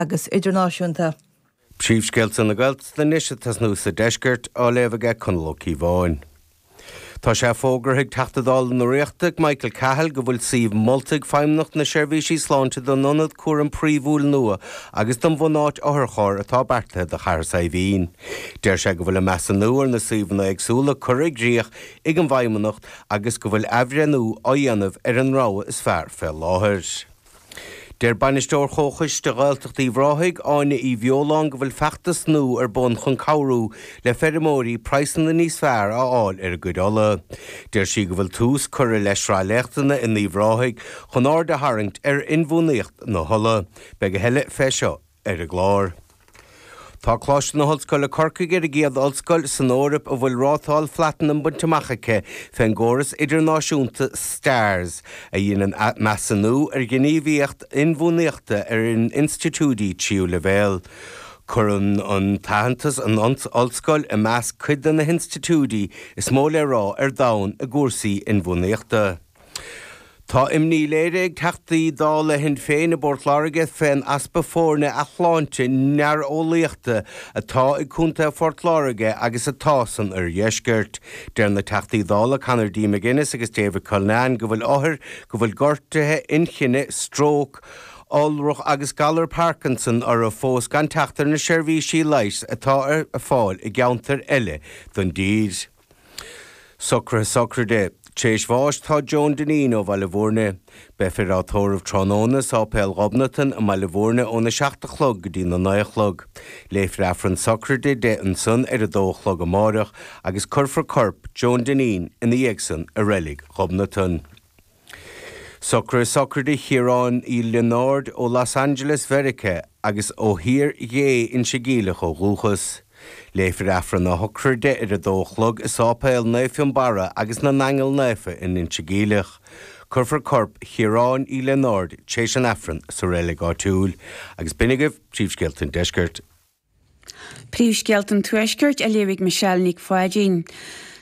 agus idirnáisiúnta. Príomhscéalta na Gaeltachta anois ag tosnú sa deisceart, á léamh ag Conall Ó Cíobháin. Tá sé fógartha ag Teachta Dála na Ríochta, Michael Cahill, go bhfuil suíomh molta ag Feidhmeannacht na Seirbhísí Sláinte don ionad cúraim phríomhúil nua agus don bhunáit otharchairr atá beartaithe do Chathair Saidhbhín. Deir sé go bhfuil an measúnú ar na suíomhanna éagsúla curtha i gcrích ag an bhFeidhmeannacht agus go bhfuil athbhreithniú á dhéanamh ar an rogha is fearr fé láthair. Deir Bainisteoir Chomhchoiste Ghaeltacht Uíbh Ráthaigh, Áine Uí Bheoláin go bhfuil feachtas nua ar bun chun cabhrú le feirmeoirí praghsanna níos fearr a fháil ar a gcuid olla. Deir sí go bhfuil tús curtha le sraith léachtanna in Uíbh Ráthaigh chun aird a tharraingt ar inbhuanaíocht na holla. Beidh a thuilleadh fé seo ar an gclár. Tá Coláiste na hOllscoile Corcaigh ar an gcéad ollscoil san Eoraip a bhfuil rátáil Phlatanam bainte amach aici fén gcóras idirnáisiúnta stars, a dheineann measúnú ar ghníomhaíocht inbhuanaíochta ar institiúidí tríú leibhéal. Cuireann an t-aitheantas an ollscoil i measc cuid de na hinstitiúidí is mó le rá ar domhan i gcúrsaí inbhuanaíochta. Tá imní léirithe ag Teachtaí Dála Shinn Féin i bPort Láirge fén easpa foirne athshláinte néareolaíochta atá i gContae Phort Láirge agus atá san oirdheisceart. Deir na Teachtaí Dála Conor D. McGuinness agus David Cullinane go bhfuil othair go bhfuil gortuithe inchinne, stróc, iolrach agus galar Parkinson orthu fós gan teacht ar na seirbhísí leighis atá ar fáil i gceantair eile don dtír. Socruithe sochraide. Tar éis bháis tá Joan Dineen ó Bhaile Bhúirne. Beifear á tórramh tráthnóna i Sáipéal Ghobnatan i mBaile Bhúirne óna seacht a chlog go dtí na naoi a chlog. Léifear Aifreann sochraide di ansan ar a dó a chlog amáireach agus cuirfear corp Joan Dineen ina dhiaidh san i Reilig Ghobnatan. Socruithe sochraide Chiaráin Uí Lionáird ó Los Angeles, Mheiriceá, agus ó Thír Ghé, Inse Geimhleach ó dhúchas. Léifear Aifreann a shochraide ar a dó a chlog i sáipéal Naomh Fionnbarra agus na nAingeal Naofa in Inse Geimhleach. Cuirfear corp Chiaráin Uí Lionáird téis an Aifrinn sa reilig áitiúil, agus b'in agaibh príomhscéalta an deiscirt. Príomhscéalta an Tuaiscirt á léamh ag Michelle Nic Pháidín.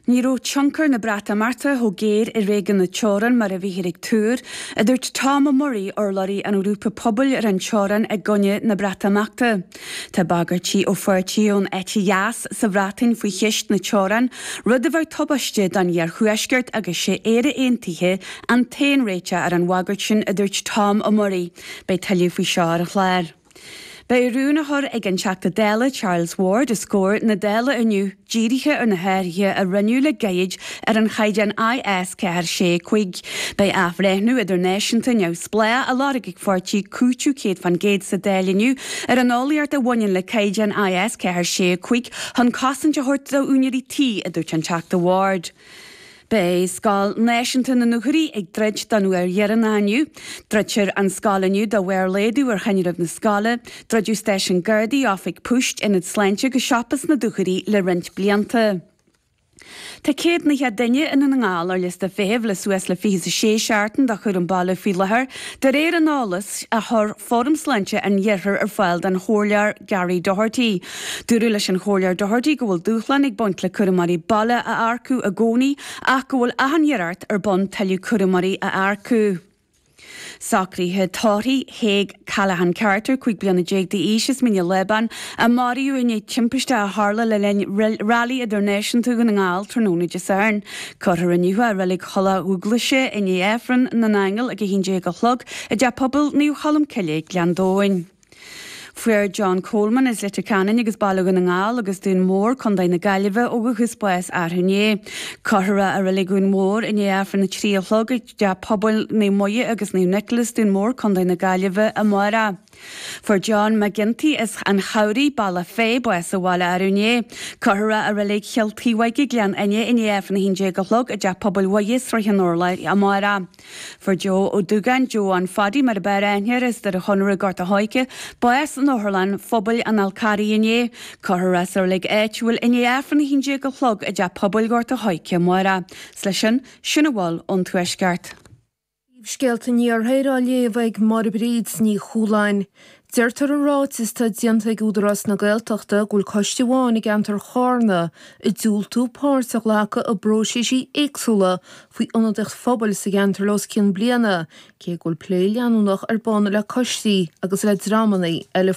Ní raibh tionchar na Breatimeachta chomh géar i réigiún na teorann mar a bhíthear ag tuar, a dúirt Tom Murray, urlabhraí an ghrúpa pobail ar an teorainn i gcoinne na Breatimeachta. Tá bagairtí ó pháirtithe ón eite dheas sa Bhreatain faoi cheist na teorann, rud a bheadh tubaisteach don iarthuaisceart agus sé Éire Aontaithe an t-aon réiteach ar an bhagairt sin, a dúirt Tom Murray. Beidh tuilleadh faoi seo ar an chlár. Beidh rún á chur ag an Teachta Dála Charles Ward os comhair na Dála inniu dírithe ar na hathruithe a rinneadh le gairid ar an chaighdeán IS 4 6 5. Beidh athbhreithniú idirnáisiúnta neamhspleách á lorg ag an pháirtí Cúiteamh 100% sa Dáil inniu ar an eolaíocht a bhaineann le caighdeán IS 4 6 5 chun cosaint a thabhairt d'úinéirí tí, a dúirt an Teachta Ward. Beidh Scoil Náisiúnta na nDúchoraidh ag druid don uair dheireanach inniu. Druidfear an scoil inniu de bharr laghdú ar thinreamh na scoile. Druideadh stáisiún Gardaí, oifig poist, ionad sláinte agus siopa sna Dúchoraidh le roinnt blianta. Tá céad naocha duine i nDún na nGall ar liosta feithimh le suas le fiche a sé seachtain do chúram baile faoi láthair, de réir an eolais a chuir Fóram Sláinte an Iarthair ar fáil don Chomhairleoir Gary Doherty. Dúradh leis an Chomhairleoir Doherty go bhfuil dúshlán ag baint le cúramóirí baile a earcú i gcónaí ach go bhfuil achan iarracht ar bun tuilleadh cúramóirí a earcú. Socruithe tórraimh Thadhg Callaghan Carter, 15 bliana d'aois as Mín a' Lábáin, a maraíodh i ndiaidh timpiste a tharla le linn Railí Idirnáisiúnta Dhún na nGall tráthnóna Dé Sathairn. Cuirfear inniu é i Reilig Thulach Dubhghlaise i ndiaidh Aifreann na nAingeal ag 11 a chlog i dTeach Pobail Naomh Cholm Cille, Gleann Domhain. Fuair John Coleman as Leitir Ceanainn agus Baile Dhún na nGall agus Dún Mór, Co. na Gaillimhe, ó dhúchas, bás arú inné. Cuirfear é i Reilig Dhún Mór i ndiaidh Aifreann a trí a chlog i dTeach Pobail Naomh Muire agus Naomh Nicholas, Dún Mór, Co. na Gaillimhe, amárach. Fuair John McGinty as An Chabhraigh, Bealach Féich, bás sa bhaile arú inné. Cuirfear é i Reilig Chill Taobhóige, Gleann Fhinne i ndiaidh Aifreann a haon déag a chlog i dTeach Pobail Mhuire, Srath an Urláir, amárach. Fuair Joe Ó Dúgáin, Joe An Phadaí mar ab fhearr aithne air as Doire Chonaire, Gort an Choirce, bás in Otharlann Phobail an Fhál Carraigh inné. Cuirfear é sa reilig áitiúil i ndiaidh Aifreann 11 a chlog i dTeach Pobail Ghort an Choirce amárach. 'S leis sin, sin a bhfuil ón Tuaisceart. Príomhscéalta an Iarthair á léamh ag Máire Bríd Ní Chualáin. Deirtear i ráiteas atá déanta ag Údarás na Gaeltachta go bhfuil coiste amháin i gceantar Charna ag diúltú páirt a ghlacadh i bpróiseasí éagsúla faoi ionadaíocht phobail sa gceantar le os cionn bliana cé go bhfuil plé leanúnach ar bun le coistí agus le dreamanna eile